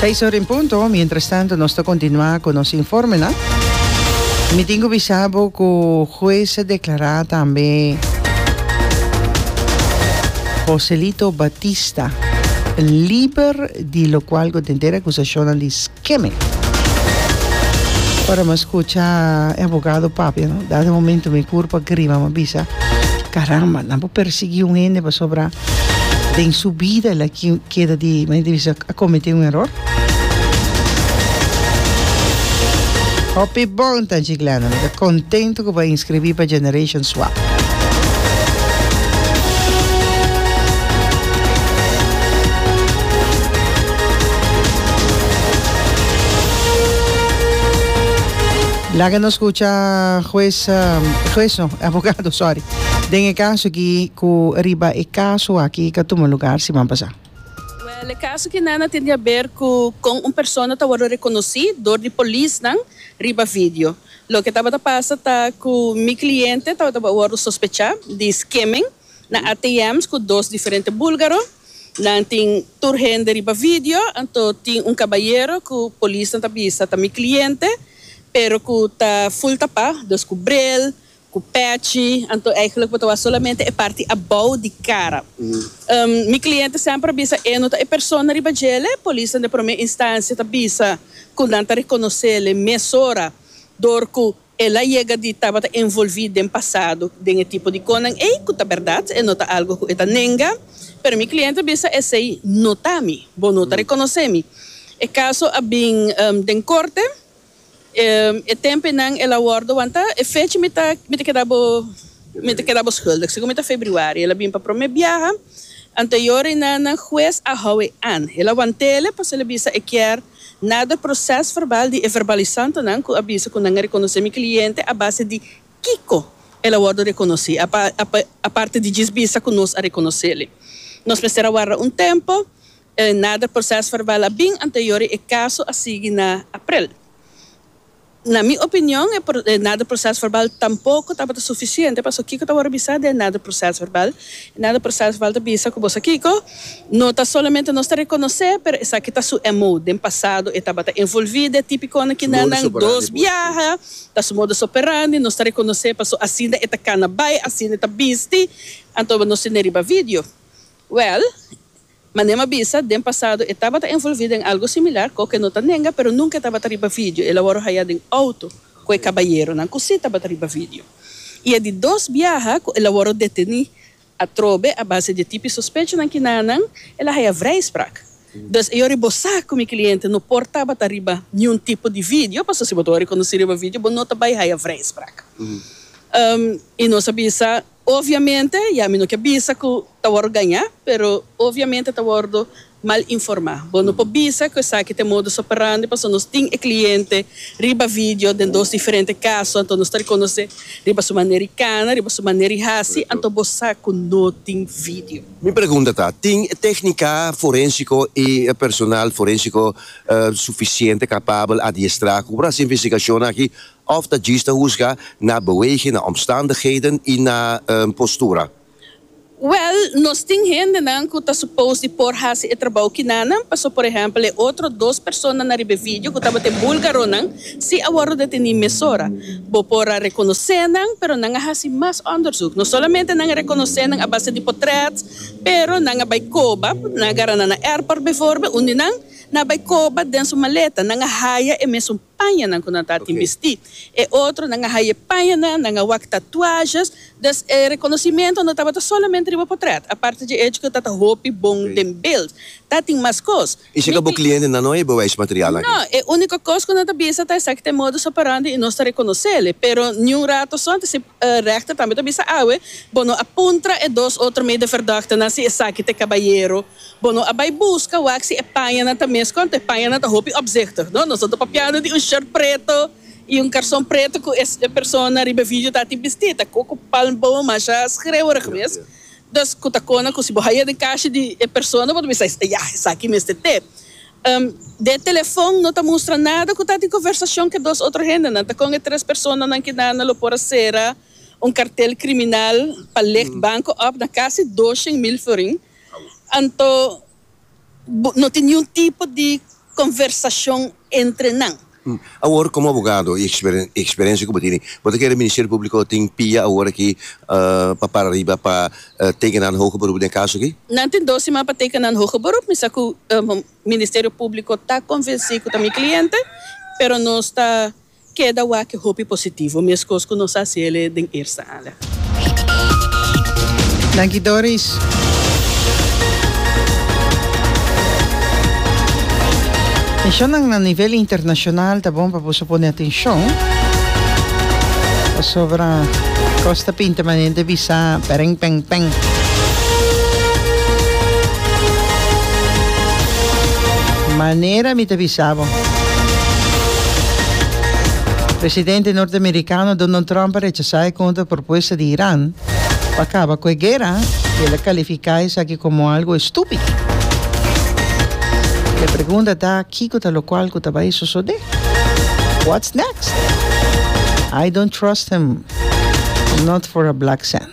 Seis ora en punto, mientras tanto nos ta continua cu nos informenan. Mi tin cu bisabo cu juez a declara tambe Joselito Batista liber di locual cu tenter acusacionnan di keme. Ora mi a skucha e abogado papia no, dado momento mi puru pa grima mi a bisa, karamba nan por persiguí un hende pasobra den su bida el a keda di mi ta bisa a komet'é un eror. Hopi bon ta Chiclana, mi ta kontento ku bo a inskribí pa Generation. Pascua. Laga nos scucha juez, juez no, abogado, sorry, den e caso aki cu riba e caso aki cu a tuma lugar siman pasá. Wel, e caso aki nan a tende haber cu con un persona ta wordo reconocí door di polisnan riba video. Loke tabata pasa ta cu mi cliente tabata por wordo sospecha di skimming na ATM's cu dos diferente bulgaro. Nan tin tur hende riba video, anto tin un cabayero cu polisnan ta bisa ta mi cliente, pero cu ta full tapa, dus cu bril, cu patch, anto eigenlijk bo ta wak solamente e parti abou di cara. Mi cliente semper a bisa e no ta e persona riba djele, polisnan den prome instancia ta bisa. ku nan ta rekonosele mesora dor ku el a yega di tabata envolvi den pasado den e tipo di konan ei, ku ta bèrdat, e no ta algu ku e ta nenga. Pero mi kliente a bisa, Esei no ta mi. Bo no ta rekonosé mi. E kaso a bin den korte. E tempenan el a wòrdu wanta. E fecha mi ta keda bo, mi ta keda bo skuldig. Segun mi ta febrüari el a bin pa promé biaha. Anteyor e nana hues a hou e angel a wantele pa sali bisa e kier nada proces verbal di e verbalisantonan cu a bisa cu nan a reconoce mi cliente a base di kico el a wordo reconoci aparte di djis bisa cu nos a reconoceli. Nos mester a warda un tempo, e nada proces verbal a bin anteyor e caso a sigui na April. Na mi opinion e nader proces verbal tampoco tabata suficiente pasobra kico ta wor bisa den e nader proces verbal? E nader proces verbal ta bisa cu bo sa kico? No ta solamente nos ta reconoce pero esaki ta su MO. Den pasado e tabata envolvi den tipiconan kinan nan dos biaha, ta su modus operandi, nos ta reconoce pasobra asina e ta cana bay, asina e ta bisti, anto nos tin den riba video. Well. Manem a bisa, den pasado e tabata envolví den algu similar, cu oca e no ta nenga, pero nunca e tabata riba video, el a wòrdu hayá den auto cu e cabayeronan cu sí tabata riba video. I e di dos biaha cu el a wòrdu detení atrobe a base di e tipi sospechonan kinanan, el a hayá vrijspraak. Dus e yori bo sa cu mi cliente no por tabata riba niun tipo di video, pasobra si bo ta wòrdu riconocí riba video bo no ta bay haya vrijspraak. I nos a bisa, Obviamente, ya mi no ke bisa ku ta wòrdu gañá, pero obviamente ta wòrdu mal informá. Bo no por bisa ku esaki ta e modus operandi pasobra nos tin e kliente riba vidio den dos diferente kaso, anto nos ta rekonosé riba su manera di kana, riba su manera di hasi, anto bo sa ku no tin vidio. Mi pregunta ta, tin e téknika forénsiko i e personal forénsiko sufisiente kapabel, adiestrá, ku por hasi investigashonnan aki Òf ta djis ta husga na beweging, na omstandigheden i na postura? Wèl, nos tin hendenan ku ta supos di por hasi e trabou kinanan. Pasó por ehèmpel e otro dos persona na riba e vidio ku tabata e bulgaronan, si a wòrdu detení mesora. Bo por a rekonosé nan, pero nan a hasi mas òndersuk. No solamente nan a rekonosé nan a base di potrèt, pero nan a bai koba, nan a gara nan na airport bevoorbeeld, unda nan nan a bai koba den su maleta, nan a haya e mesun. pañanan ku nan ta tin bistí. E otronan a haye pañanan, nan a wak tatuajes, dus e rekonosimentu no tabata solamente riba potrèt. Aparte dje echo ku ta ta hopi bon den beld, ta tin mas kos. I si ka bo kliente nan no hebe wak e material aki? No, e úniko kos ku nan ta bisa ta esaki ta e modus operandi i nos ta rekonosele. Pero niun rato so, anto si rèchter tambe ta bisa awe, bo no a puntra e dos otro meideverdòkternan si esaki ta e kabayero Bo no a bai buska wak si e pañanan ta mes konta. E pañanan ta hopi opzichtig, no? Nos a ta papiando di un short preto i un karson preto ku e persona riba e video ta tin bistí. Ta koko palm bow, masha skrewerig mes. Dus ku ta kona ku si bo haya den kashi di e persona bo ta bisa, ya, esaki mester te. Den e telefon no ta mustra nada ku ta di konversashon ku e dos otro hendenan. Ta kon e tres personanan kinanda lo por a sera un kartel kriminal pa legt banko òf na kasi doshen mil florin. Anto no tin niun tipo di conversacion entre nan. Awor como abogado y experiencia cu bo tin, bo ta kere Ministerio Publico tin pia awor aki pa para riba pa teken nan hoger beroep den caso aki? Nan tin dos siman pa teken nan hoger beroep. Mi sa cu Ministerio Publico ta convenci cu ta mi cliente, pero nos ta. Keda wak e hopi positivo, meskos ku nos a hasi el e den eerste aanleg. Danki Doris. E shownan na nivel internashonal ta bon pa boso pone atenshon pasobra kos ta pinta manera di bisa bèrèng pèng pèng. Manera mi ta bisa bo. Presidente norteamerikano Donald Trump a rechasá e kontra propuesta di Iran pa kaba ku e guera i el a kalifiká esaki komo algu estúpido. E pregunta ta kiko ta lokual ku ta bai sosodé? What's next? I don't trust him, not for a black cent.